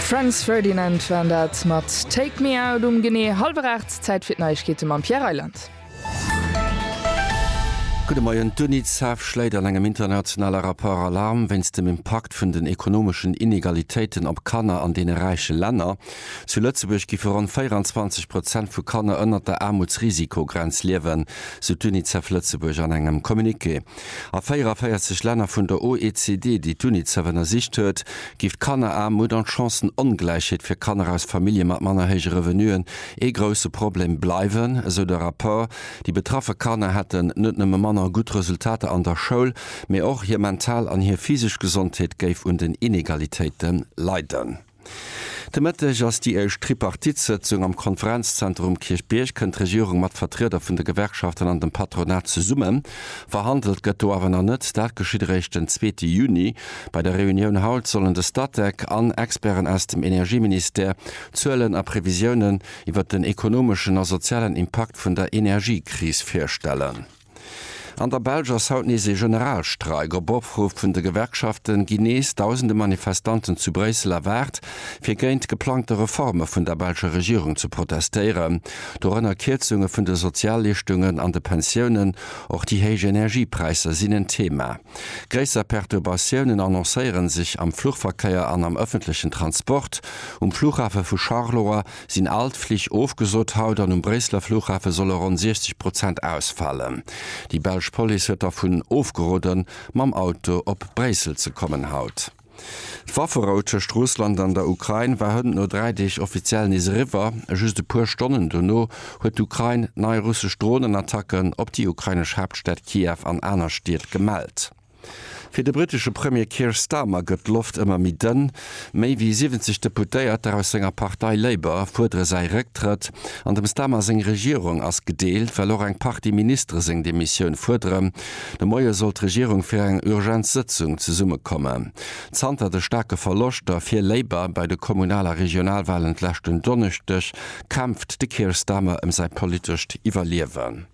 Franz Ferdinand waren dat mat Take me out um genee hallwer 8. Zäit fir d'Neiegkeete mam Pierre Reyland. Gudde Moien, D'UNICEF schléit an engem internationale Rapport Alarm wéinst dem Impakt vun den ekonomeschen Inegalitéiten op Kanner an deene räiche Länner. Zu Lëtzebuerg giffe ronn 24 Prozent vu Kanner ënnert der Aarmutsrisikogrenz liewen, sou d'UNICEF Lëtzebuerg an engem Communiqué. A 44 Länner vun der OECD, déi d'UNICEF ënnersicht huet, géif d'Kanneraarmut an d'Chancen-Ongläichheet fir Kanner aus Famillje mat manner héije Revenuen ee grousse Problem bleiwen, esou de Rapport. Déi betraffe Kanner hätten net nëmme manner gutt Resultater an der Schoul, mee och hir mental an hir physesch Gesondheet géif un den Inegalitéite leiden. De Mëtteg ass déi éischt Tripartite-Sëtzung am Konferenzzenter um Kierchbierg. Kënnt d'Regierung mat Vertrieder vun de Gewerkschaften an dem Patronat zesummen? Verhandelt gëtt do awer nach net. Dat geschitt eréischt den zweete Juni. Bei der Reunioun haut sollen de Statec an Experten aus dem Energieministère Zuelen a Previsiounen iwwert den ekonomeschen a sozialen Impakt vun der Energiekris virstellen. An der Belsch ass haut nees ee Generalstreik. Op Opruff vun de Gewerkschaften ginn nees dausende Manifestanten zu Bréissel erwaart, fir géint d'geplangte Reforme vun der belscher Regierung ze protestéieren. Dorënner Kierzunge vun de Sozialleeschtungen an de Pensiounen. Och déi héich Energiepräisser sinn en Thema. Gréisser Perturbatiounen annoncéiere sech am Fluchverkéier an am ëffentlechen Transport. Um Flughafe vu Charleroi sinn all d'Flich ofgesot haut an um Bréisseler Flughafe solle ronn 60 Prozent ausfalen. Déi belsch Police huet dervun ofgeroden, mam Auto op Bréissel ze kommen haut. D'Wafferou tëscht Russland an der Ukrain war hënt no dräi Deeg offiziell nees eriwwer. Just e puer Stonnen dono huet d'Ukrain nei russesch Dronenattacken op déi ukrainesch Haaptstad Kiew an aner Stied gemellt. Fir de britesche Premier Keir Starmer gëtt d'Loft ëmmer méi dënn. Méi wéi 70 Deputéierter aus senger Partei Labour fuerdere säi Récktrëtt. An dem Starmer seng Regierung ass gedeelt, well och eng Partie Ministere seng Demissioun fuerderen. De Moie soll d'Regierung fir eng Urgenzsëtzung zesummekommen. Zanter de staarke Verloschter fir Labour bei de Kommunal a Regionalwalen d'leschten Donneschdeg kämpft de Keir Starmer ëm säi politescht Iwwerliewen.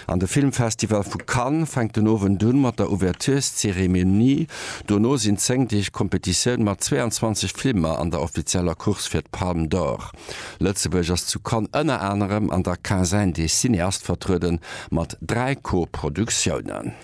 An de Filmfestival vu Cannes fänkt den Owend un mat der Ouvertureszeremonie. Dono sinn 10 Deeg Competitioun mat 22 Filmer an der offizieller Course fir d'Palme d'Or. Lëtzebuerg ass zu Cannes ënner anerem an der Quinzaine des cinéastes vertrueden mat 3 Co-Produktiounen.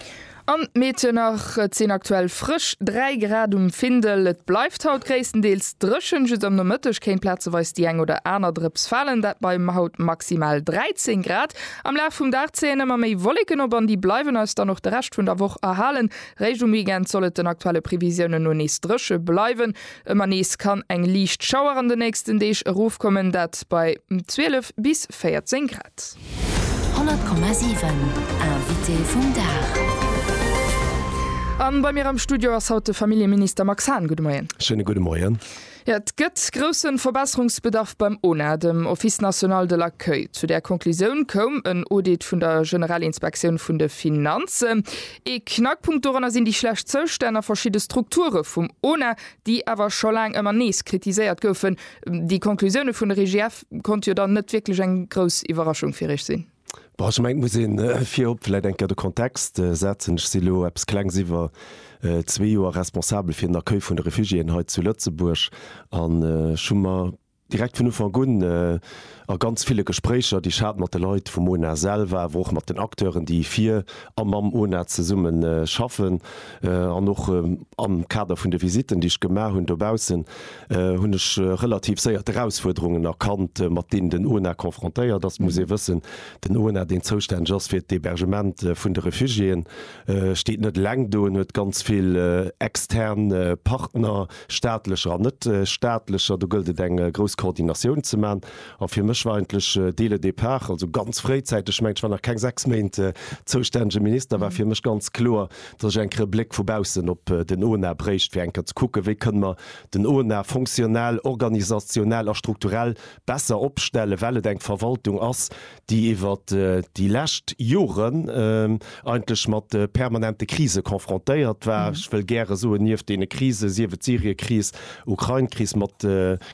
An d'Meedchen nach, et sinn aktuell frësch 3 Grad um Findel. Et bleift haut gréisstendeels dréchen, just am Nomëtteg kéint plazeweis déi eng oder aner Drëps falen, dat bei haut maximal 13 Grad. Am Laf vum Dag zéien ëmmer méi Wolleken op an déi bleiwen eis dann och de Rescht vun der Woch erhalen. Réischt um Weekend soll et den aktuelle Previsiounen no nees dréche bleiwen. Ëmmer nees kann eng liicht Schauer an de nächsten Deeg erofkommen, dat bei 12 bis 14 Grad. 100,7 Invité vum Dag. A bei mir am Studio ass haut de Familljeminister Max Hahn. Gudde Moien. Schéine gudde Moien. Jo, et gëtt grousse Verbesserungsbedarf beim ONA, dem Office national de l'accueil. Zu där Conclusioun koum en Audit vun der General-Inspektioun vun de Finanzen. Ee Knackpunkt doranner sinn déi schlecht Zoustänn a verschidde Strukture vum ONA, déi awer scho laang ëmmer nees kritiséiert goufen. Déi Conclusioune vun der IGF konnt jo dann net wierklech eng grouss Iwwerraschung fir Iech sinn. Bon, ech mengen, et muss ee virop vläicht eng Kéier de Kontext setzen. Ech si lo eppes klengs iwwer zwee Joer Responsabel fir den Accueil vun de Refugiéen hei zu Lëtzebuerg an ech hu mer Direkt vun Ufank un, a ganz ville Gespréicher, déi ech hat mat de Leit vum ONA selwer, awer och mat den Acteuren, déi fir a mam ONA zesumme schaffen, an och am Kader vun de Visitten, déi ech gemaach hunn dobaussen, hunn ech relativ séier d'Erausfuerderungen erkannt, mat deenen den ONA confrontéiert ass. Et muss ee wëssen, den ONA, deen zoustänneg ass fir d'Hébergement vun de Refugiéen, steet net eleng do. En huet ganz vill extern Partner. staatlecher an net staatlecher, do gëllt et eng grouss Koordinatioun ze man. A fir mech war eigentlech dès le départ, also ganz fréizäiteg, ech mengen ech war nach keng 6 Méint zoustännege Minister, war fir mech ganz kloer, datt ech eng Kéier e Bléck vu baussen op den ONA bréicht, fir eng Kéier ze kucken, wéi kënne mer den ONA fonctionnel, organisationell a strukturell besser opstellen, well et eng Verwaltung ass, déi iwwer déi lescht Joren eigentlech mat permanente Krise confrontéiert war, ech wëll gäre soen, nieft deene Krisen, sief et d'Syrien-Kris, Ukrain-Kris, mat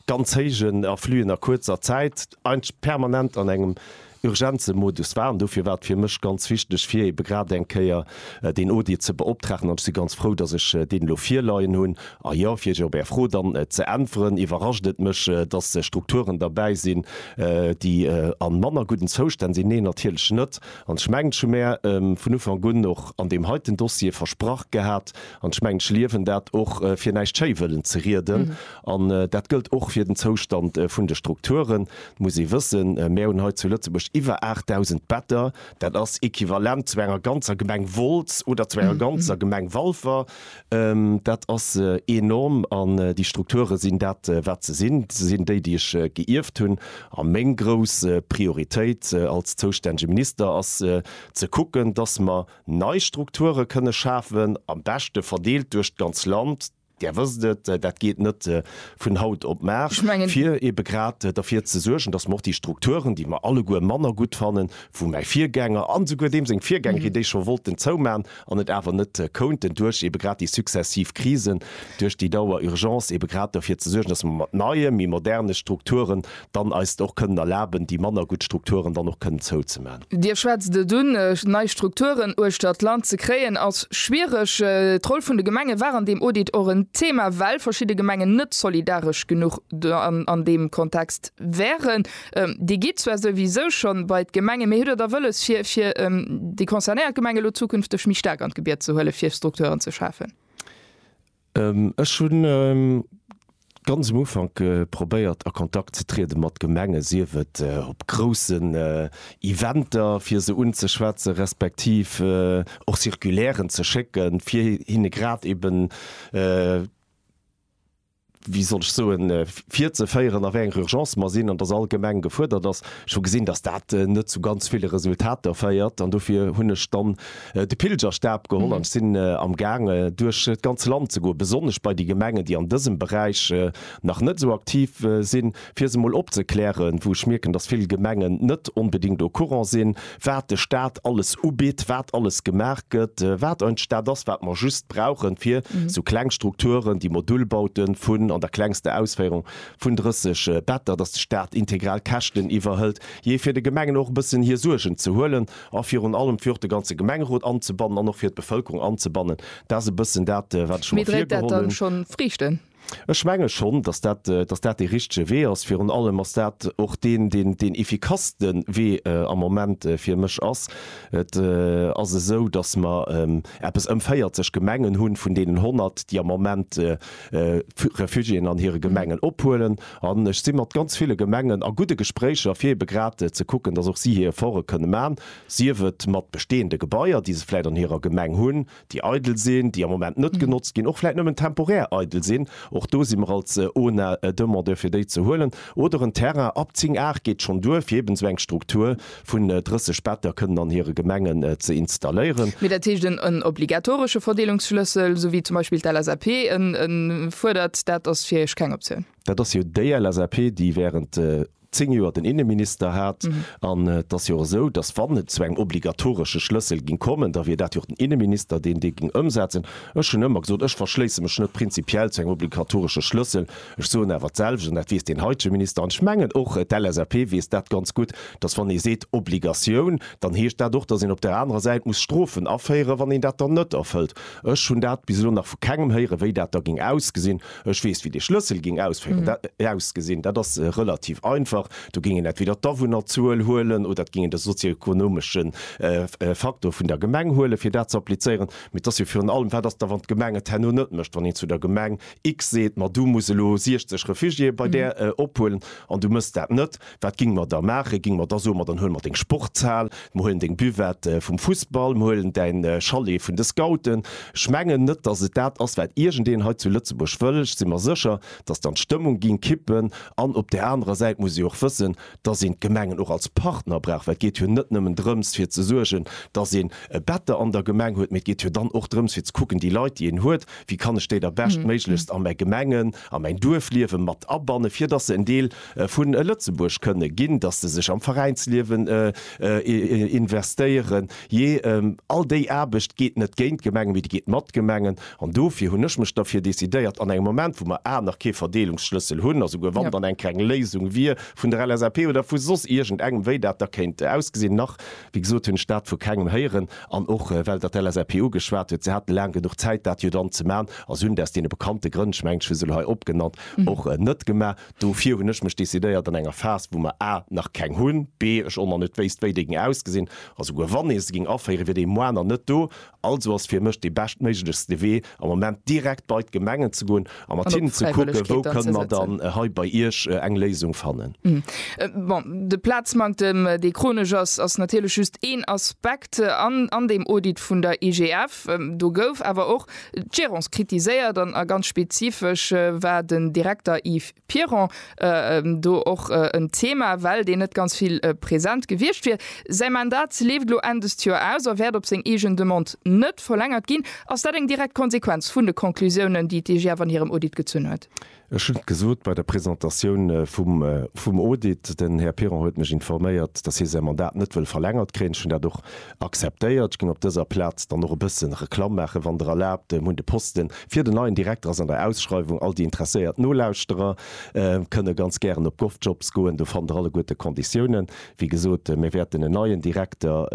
ganz héijen Affluen a kuerzer Zäit, eigentlech permanent an engem Urgenze-Modus war. An dofir war et fir mech ganz wichteg, fir ebe grad eng Kéier deen Audit ze beoptragen, an ech si ganz frou, dass ech deen elo virleien hunn. A jo, fir Iech op Är Fro dann ze äntweren, iwwerrascht et mech, dass Strukturen derbäi sinn, déi a manner gudden Zoustänn sinn. Neen, natierlech net. An ech mengen, ech hu mär vun Ufank un och an deem heiten Dossier versprach gehat, an ech mengen, ech liewen dat och, fir näischt schéi wëllen ze rieden, an dat gëllt och fir den Zoustand vun de Strukturen, muss ee wëssen, mär hunn hei zu Lëtzebuerg iwwer 8.000 Better, Dat ass equivalent zu enger ganzer Gemeng Wolz oder zu enger ganzer Gemeng Walfer. Dat ass enorm an déi Strukture sinn dat, wat se sinn. Se sinn déi, déi ech geierft hunn. A meng grouss Prioritéit als zoustännege Minister ass ze kucken, dass mer nei Strukture kënne schafen, am beschte verdeelt duerch d'ganz Land, Där wësst et, dat geet net vun haut op mar, fir ebe grad derfir ze suergen, dass mer och déi Strukturen, déi mer alleguer manner gutt fannen, wou mäi Virgänger an esouguer deem seng Virgängerin déi scho wollten zouman an et awer net kounten duerch ebe grad déi successiv Krisen, duerch déi Dauer-Urgence, ebe grad derfir ze suergen, dass mer mat neie, méi moderne Strukturen dann eis och kënnen erlaben, déi manner gutt Strukturen dann och kënnen zouzemaachen. Dir schwätzt et un, nei Strukturen uechtert d'Land ze kréien ass schwiereg. D'Roll vun de Gemenge war an deem Audit och en Thema, well verschidde Gemengen net solidaresch genuch an deem Kontext wären. Dir gitt zwar souwisou scho bei d'Gemenge, mee hutt Der da wëlles, fir déi concernéiert Gemenge elo zukünfteg méi staark an d'Gebied ze huelen, fir Strukturen ze schafen? Ech hunn ganz um Ufank probéiert a Kontakt ze triede mat Gemengen, sief et op groussen Eventer fir se unzeschwätze respektiv och Circulairen ze schécke fir hinne grad eben, wéi soll ech soen, virzeféieren a wéi enger Urgence mer sinn an datt all Gemeng gefuerdert ass. Ech hu gesinn, datt dat net zu ganz ville Resultater féiert an dofir hunn ech dann de Pilgerstab geholl an ech sinn am Gaang duerch d'ganz Land ze goen, besonnesch bei déi Gemengen, déi an dësem Beräich nach net esou aktiv sinn, fir se emol opzeklären, wou ech mierken, dass vill Gemengen net onbedéngt au courant sinn, wat de Stat alles ubitt, wat alles gemaach gëtt, wat ein Stat ass, wat mer just brauchen, fir esou kleng Strukturen, déi Modulbauten vun, an der klengster Ausféierung, vun 30 Better, dass de Stat integral d'Käschten iwwerhëlt, jee, fir de Gemengen och e bëssen hir Suergen ze huelen. a virun allem fir och de ganze Gemengerot anzebannen an och fir d'Bevëlkerung anzebannen. Dat ass e bëssen dat, wat ech mer virgeholl hunn. Ech menge schonn, datt dat, datt dat dee richtege Wee ass. Virun allem ass dat och deen, deen deen effikasste Wee am Moment fir mech ass. Et ass esou, datt mer eppes ëm 40 Gemengen hunn, vun deenen 100, déi am Moment Refugiéen an hire Gemengen ophuelen. An ech si mat ganz ville Gemengen a gudde Gespréicher, fir ebe grad ze kucken, dass och si hir Efforte kënne man, sief et mat bestehende Gebaier, déi se vläit an hirer Gemeng hunn, déi eidel sinn, déi am Moment net genotzt ginn, och vläit nëmmen temporär eidel sinn, och do si mer als ONA demandeur, fir déi ze huelen, oder en Terrain ab 10 Ar geet schonn duer, fir eben esou eng Struktur vun 30 Better kënnen an hire Gemengen ze installéieren. Mee dat heescht en en obligatoresche Verdeelungsschlëssel, esou wéi zum Beispill d'LSAP en e fuerdert, dat ass fir Iech keng Optioun? Dat ass jo déi LSAP, déi während zéng Joer den Innenminister hat. An et ass jo och esou, datt, wann et zu engem obligatoresche Schlëssel géing kommen, da wier dat jo och den Innenminister, deen dee géing ëmsetzen. Ech hunn ëmmer gesot, ech verschléisse mech net prinzipiell zu engem obligatoresche Schlëssel, Ech soen awer d'selwecht, an dat weess deen heitege Minister, an ech mengen och d'LSAP weess dat ganz gutt, dass wann ee seet Obligatioun, dann heescht dat och, dass een op där anerer Säit muss Strofen aféieren, wann een dat dann net erfëllt. Ech hunn dat bis elo nach vu kengem héieren, wéi dat da géing ausgesinn. Ech weess, wéi dee Schlëssel géing ausgesinn. Dat ass relativ einfach, Do géing een entweder d'Awunnerzuel huelen oder et géing een de sozioekonomesche Faktor vun der Gemeng huelen, fir dat ze applizéieren. Mee et ass jo virun allem, Wat ass da, wann d'Gemeng et herno net mécht, wann een zu der Gemeng X seet, ma du muss elo 60 Refugiéë bei där ophuelen an du mëss dat net, wat ging mer da maachen? Ging mer da soen, ma dann huele mer deng Sportshal, mer huelen deng Buvette vum Fussball, mer huelen däin Chalet vun de Scouten? Ech mengen net, datt et dat ass, wat iergendeen hei zu Lëtzebuerg wëll. Ech si mer sécher, datt dann d'Stëmmung ging kippen an op där anerer Säit muss ee och wëssen, dass een d'Gemengen och als Partner brauch, well et geet jo net nëmmen drëms fir ze suergen, dass een e Better an der Gemeng huet, mee et geet jo dann och drëms fir ze kucken, déi Leit déi een huet, wéi kann ech déi da beschtméiglechst a mäi Gemengen, a mäin Duerfliewe mat abannen, fir dass se en Deel vu Lëtzebuerg kënne ginn, dass se sech am Veräinsliewen investéieren. Jee, all déi Aarbecht geet net géint d'Gemengen, mee déi geet mat d'Gemengen. An dofir hunn ech mech derfir decidéiert, an engem Moment, wou mer a nach kee Verdeelungsschlëssel hunn, a souguer wann dann eng keng Léisung wier vun der LSAP oder vu soss iergend engem, wéi dat da kéint ausgesinn, nach, wéi gesot, hunn ech dat vu kengem héieren, an och well Der d'LSAP ugeschwat hutt, se haten laang genuch Zäit, dat jo dann ze man, a se hunn et aus deene bekannte Grënn, ech mengen, ech hu se elo hei opgenannt, och net gemaach. Dofir hunn ech mech decidéiert, an enger Phas, wou mer a nach keng hunn, b ech och nach net wéisst, wéi déi géing ausgesinn, a souguer wann ee se géing aféieren, wier déi Moarn nach net do, Also ass fir mech dee beschtméiglechste Wee am Moment direkt bei d'Gemengen ze goen a mat hinnen ze kucken, wou kënne mer dann hei bei Iech eng Léisung fannen. Bon, de Plazmanktem, dee chronesch ass, ass natierlech just een Aspekt an deem Audit vun der IGF. Do gouf awer och d'Gérance kritiséiert an ganz spezifesch war den Direkter Yves. Piron, Do och en Thema, well deen net ganz vill present gewiescht wier. Säi Mandat leeft elo Enn dëst Joer aus a wäert op seng eegen Demande net verlängert ginn. Ass dat eng direkt Konsequenz vun de Conclusiounen, déi d'IGF an hirem Audit gezunn huet? Ech hunn et gesot bei der Presentatioun vum Audit, den Här Piron huet mech informéiert, datt hie säi Mandat net wëll verlängert kréien. Ech hunn dat och Akzeptéiert. Ech geng op dëser Plaz dann och e bëssen Reklamm maachen, wann Der erlaabt. Hunn de Posten fir den neien Direkter ass an der Ausschreiwung. All déi interesséiert Nolauschterer kënne ganz gären op GovJobs goen. Do fannt Der alleguerte Konditiounen. Wéi gesot, mir wäerten en neien Direkter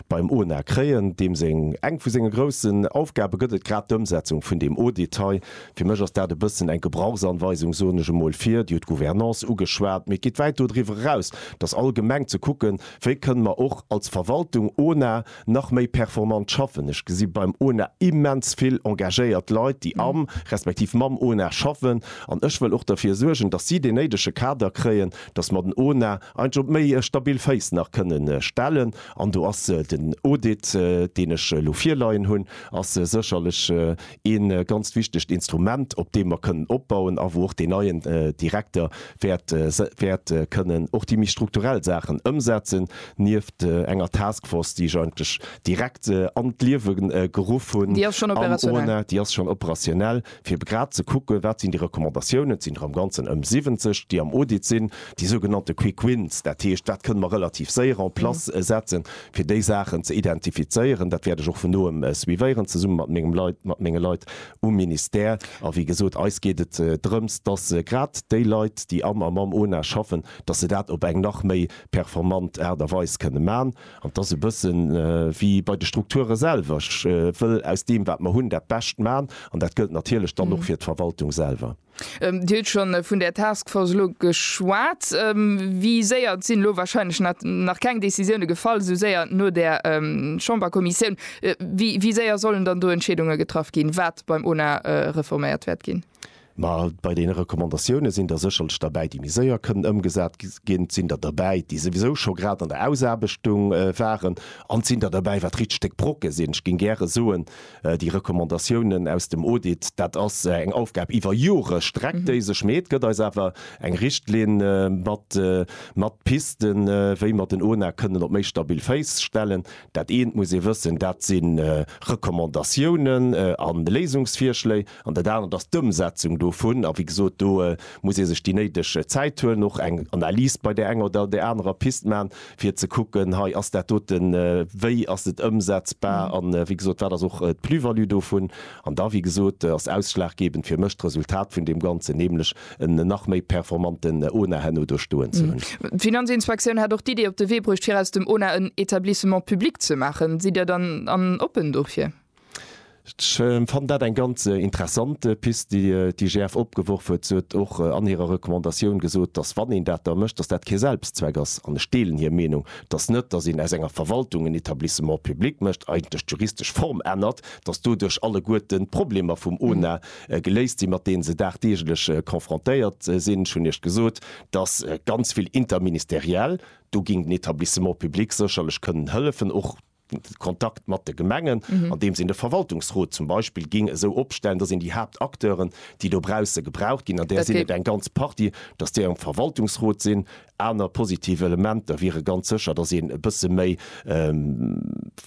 beim ONA kréien, deem seng, eng vu senge groussen Aufgabe gëtt et grad d'Ëmsetzung vun deem Audit hei. Fir mech ass dat e bëssen eng Gebrauchsanweisung, soen ech emol, fir, Dir hutt d'Gouvernance ugeschwat, mee et geet wäit dodriwwer eraus, dass allgemeng ze kucken, Wéi kënne mer och als Verwaltung ONA nach méi performant schaffen? Ech gesi beim ONA immens vill engagéiert Leit, déi am, respektiv mam ONA schaffen. An ech wëll och derfir suergen, dass si deen néidege Kader kréien, dass mer den ONA eigentlech op méi stabil Féiss nach kënnen stellen. An do ass den Audit, deen ech elo virleien hunn, ass sécherlech Ee ganzt wichtegt Instrument, op deem mer kënnen opbauen a wou och deen neien Direkter wäert kënnen och déi méi strukturell Saachen ëmsetzen, nieft enger Taskforce, déi ech eigentlech direkt an d'Liewe geruff hunn am ONA, déi ass schonn operationell, fir grad ze kucken, wat sinn déi Recommandatiounen, et sinn der am Ganzen ëm 70, déi am Audit sinn, déi sougenannte Quick Wins, dat heescht, wat kënne mer relativ séier en place setzen, fir déi Saachen ze identifizéieren. Dat wäert ech och vun noem suivéieren, zesumme mat mengem Leit, mat menge Leit um Ministère. A wéi gesot, eis geet et drëms, dass grad déi Leit, déi am a mam ONA schaffen, dass se dat op eng nach méi performant Aart a Weis kënne man. An et ass e bësse wéi bei de Strukture selwer. Ech wëll aus deem, wat mer hunn, dat Bescht man. An dat gëllt natierlech dann och fir d'Verwaltung selwer. Dir hutt scho vun där Task Force elo geschwat. Wéi séier, et sinn elo wahrscheinlech nach keng Decisioune gefall, esou séier no där Chamberkommissioun, wéi séier sollen dann do Entscheedunge getraff ginn, wat beim ONA reforméiert wäert ginn? Ma bei deene Recommandatioune sinn der sécherlech derbäi, déi méi séier kënnen ëmgesat ginn. Et sinn der derbäi, déi souwisou scho grad an der Ausaarbechtung waren. An et sinn der derbäi, wat richteg Brocke sinn. Ech géing gäre soen, Déi Recommandatiounen aus dem Audit, dat ass eng Aufgab iwwer Jore streckt déi sech, mee et gëtt eis awer eng Richtlinn mat mat Pisten, wéi mer den ONA kënnen op méi stabil Féiss stellen. Dat eent muss ee wëssen, dat si Recommandatiounen a Léisungsvirschléi. An dat anert ass d'Ëmsetzung dovun. A wéi gesot, do muss ee sech déi néideg Zäit huelen, och eng Analys bei där enger oder där anerer Pist maachen, fir ze kucken, hei ass dat doten, wéi ass et ëmsetzbar a wéi gesot, wat ass och d'Plus-value dovun. An da, wéi gesot, ass ausschlaggebend fir mech d'Resultat vun deem Ganzen, nämlech en nach méi performanten ONA herno do stoen ze hunn. D'Finanzinspektioun hat och d'Idee op de Wee bruecht, fir aus dem ONA en Etablissement public ze maachen. Sidd Dir dann oppen dofir? Ech fannen dat eng ganz interessant Pist, déi d'IGF opgeworf huet. Se huet och an hirer Recommandatioun gesot, datt, wann een dat da mécht, datt dat kee Selbstzweck ass. An ech deelen hir Meenung, datt net, datt een aus enger Verwaltung en Etablissement public mécht, eigentlech d'juristesch Form ännert, datt doduerch alleguerten d'Problemer vum ONA geléist sinn, mat deene se dagdeeglech confrontéiert sinn. Ech hunn Iech gesot, datt ganz vill interministériel, do géing den Etablissement public sécherlech kënnen hëllefen, och Kontakt mat de Gemengen, andeems een de Verwaltungsrot zum Beispill géing esou opstellen, datt een déi Haaptacteuren, déi dobausse gebraucht ginn, an där sinn et eng ganz Partie, datt déi am Verwaltungsrot sinn. Aner positiv Elementer wiere ganz sécher, datt een e bësse méi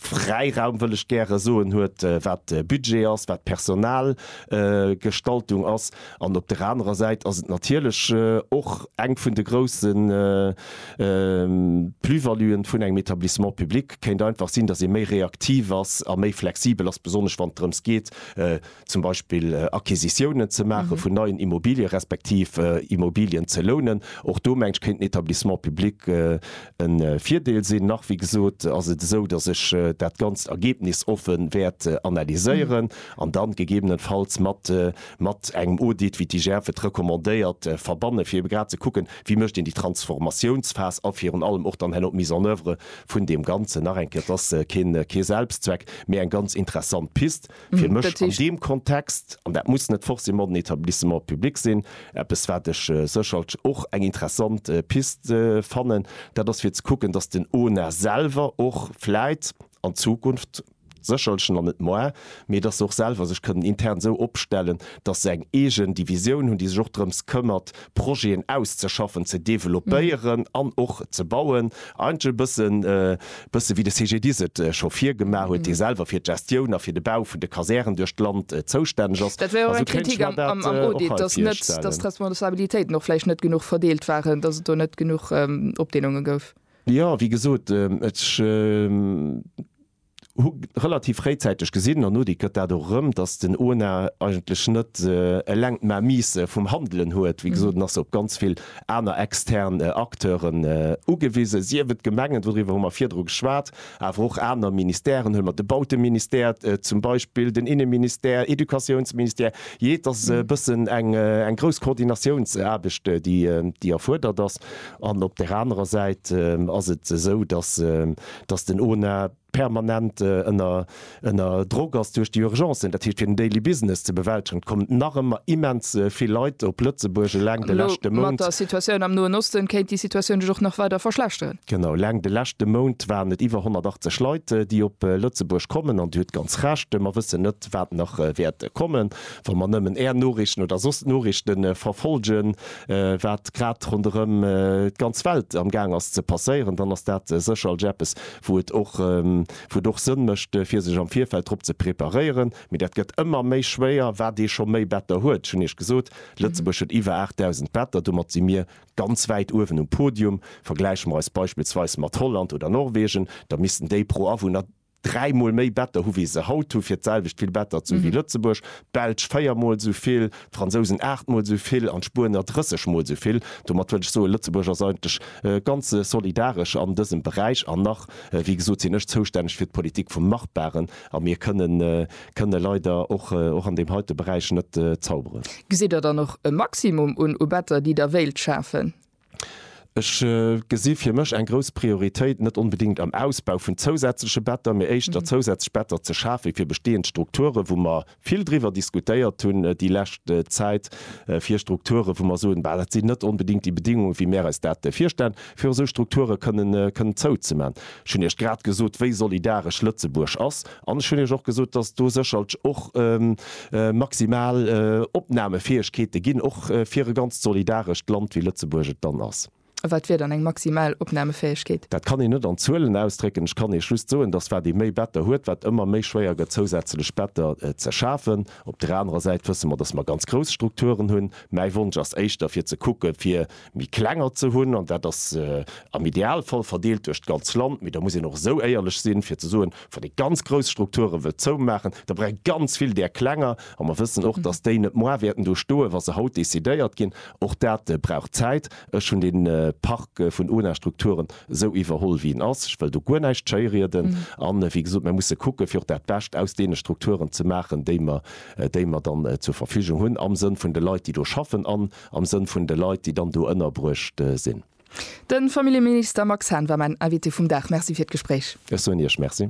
Fräiraum, wëll ech gäre soen, huet, wat Budget ass, wat d'Personalgestaltung ass. An op der anerer Säit ass et natierlech och eng vun de grousse Plus-valuen vun engem Etablissement public, kéint einfach sinn, datt ee méi reaktiv ass a méi flexibel ass, besonnesch wann et drëms geet, zum Beispill Acquisitiounen ze maache vun neien Immobilië respektiv Immobilien ze lounen. Och do, meng ech, kéint den Etablissement public e Virdeel sinn. Nach, wéi gesot, ass et esou, datt ech dat Ganzt ergebnisoffen wäert analyséieren an dann gegebenenfalls mat mat engem Audit, wéi d'IGF et recommandéiert, verbannen, fir ebe grad ze kucken, wéi mécht een déi Transformatiounsphas a virun allem och dann herno d'Mise en oeuvre vun deem Ganzen. Nach eng Kéier, et ass kee Selbstzweck, mee eng ganz interessant Pist fir mech an deem Kontext, an dat muss net forcément den Etablissement public sinn, eppes wat ech sécherlch och eng interessant Pist fannen, dat ass fir ze kucken, datt den ONA selwer och vläit an Zukunft, Sécherlchen an net moi, mee dass se och selwer sech kënnen intern esou opstellen, dass se eng eegen Divisioun hunn, déi sech och drëms këmmert, Projeten auszeschaffen, ze developpéieren an och ze bauen. Eigentlech e bëssen, e bësse wéi de CGDIS et scho vir gemaach huet, dee selwer fir d'Gestioun a fir de Bau vun de Kasären duerch d'Land zoustänneg ass. Dat war jo och eng Kritik am Audit, dass net, dass d'Responsabilitéiten och vläicht net genuch verdeelt waren, dass et do net genuch Opdeelunge gouf. Jo, wéi gesot, ech hu relativ fréizäiteg gesinn, an Nodic gëtt dat och erëm, datt den Ona eigentlech net eleng d'Mainmise vum Handelen huet. Wéi gesot, en ass op ganz vill aner extern Acteuren ugewisen, sief et d'Gemengen, doriwwer hu mer virdru geschwat, awer och aner Ministèren, huele mer de Bauteministère zum Beispill, den Inneministère, Educatiounsministère, jee, et ass e bëssen eng grouss Koordinatiounsaarbecht, déi erfuerdert ass. An op där anerer Säit ass et esou, datt den ONA permanent ënner Ënner Drock ass duerch déi Urgencen, dat heescht fir den Daily Business ze bewältegen. Et kommen nach ëmmer immens vill Leit op Lëtzebuerg eleng de Elo leschte mat Mount. der Situatioun am Noen Osten kéint déi Situatioun sech och nach weider verschlechteren. Genau, eleng de leschte Mount waren et iwwer 180 Leit, déi op Lëtzebuerg kommen. An Dir hutt ganz Recht, mer wëssen net, wat nach wäert kommen. Wa mer nëmmen Är Noriichten oder soss d'Noriichte verfolgen, wat grad ronderëm d'ganz Welt am Gaang ass ze passéieren, dann ass dat sécherlech eppes, wou et och, Wou et och Sënn mécht fir sech am Virfeld drop ze preparéieren, mee dat gëtt ëmmer méi schwéier. Wat ee scho méi Better huet, ech hunn Iech gesot, Lëtzebuerg huet iwwer 8.000 Better, domat si mir ganz wäit uewen um Podium. Vergläiche mer eis beispillsweis mat Holland oder Norwegen, da missten déi pro Awunner dräi Mol méi Better hu wéi se haut hu fir d'selwecht vill Better ze hu wéi Lëtzebuerg. D'Belsch véier Mol esou vill, d'Fransousen aacht Mol esou vill an d'Spuener 30 Mol esou vill. Domat wëll ech soen, Lëtzebuerg ass eigentlech ganz solidaresch an dësem Beräich an nach Wéi gesot sinn ech zoustänneg fir d'Politik vum Machbaren a mir kënne kënne leider och och an deem heite Beräich net zauberen. Gesitt Der dann och e Maximum un u Better, déi Der wéilt schafen? Ech gesi fir mech eng grouss Prioritéit net onbedéngt am Ausbau vun zousätzleche Better, mee éischter zousätzlech Better ze schafe fir bestehend Strukturen, wou mer, vill driwwer diskutéiert hunn déi lescht Zäit, fir Strukture wou mer soen, bah dat sinn net onbedéngt déi Bedéngungen wéi mär eis dat virstellen, fir esou Strukture kënnen zouzeman. Ech hunn Iech grad gesot wéi solidaresch Lëtzebuerg ass an ech hunn Iech och gesot, datt do sécherlch och maximal Opnamefäegkeete ginn, och fir e ganzt solidarescht Land wéi Lëtzebuerg et dann ass. Wat wier dann eng maximal Opnamefäegkeet? Dat kann een net an Zuelen ausdrécken. Ech kann Iech just soen, datt wat ee méi Better huet, wat ëmmer méi schwéier gëtt zousätzlech Better ze schafen. Op der anerer Säit wësse mer, datt mer ganz grouss Strukturen hunn. Mäi Wonsch ass éischter fir ze kucke fir méi klenger ze hunn an dat ass am Idealfall verdeelt duerch d'ganz Land. Mee da muss een och esou éierlech sinn, fir ze soen, wann ee ganz grouss Strukture wëllt zoumaachen, da brauch ee ganz vill där klenger. A mer wëssen och, datt déi net moar wäerten do stoen, wa se haut decidéiert ginn. Och dat brauch Zäit. Ech hunn dee Park vun ONA-Strukturen esou iwwerholl, wéi en ass. Ech wëll do guer näischt schéirieden. A wéi gesot, mer musse kucke fir och dat Bescht aus deene Strukturen ze maachen, déi mer, déi mer dann zur Verfügung hunn, am Sënn vun de Leit, déi do schaffen an am Sënn vun de Leit, déi dann do ënnerbruecht sinn. De Familljeminister Max Hahn war mäin Invité vum Dag. Merci fir d'Gespréich. Ech soen Iech Merci.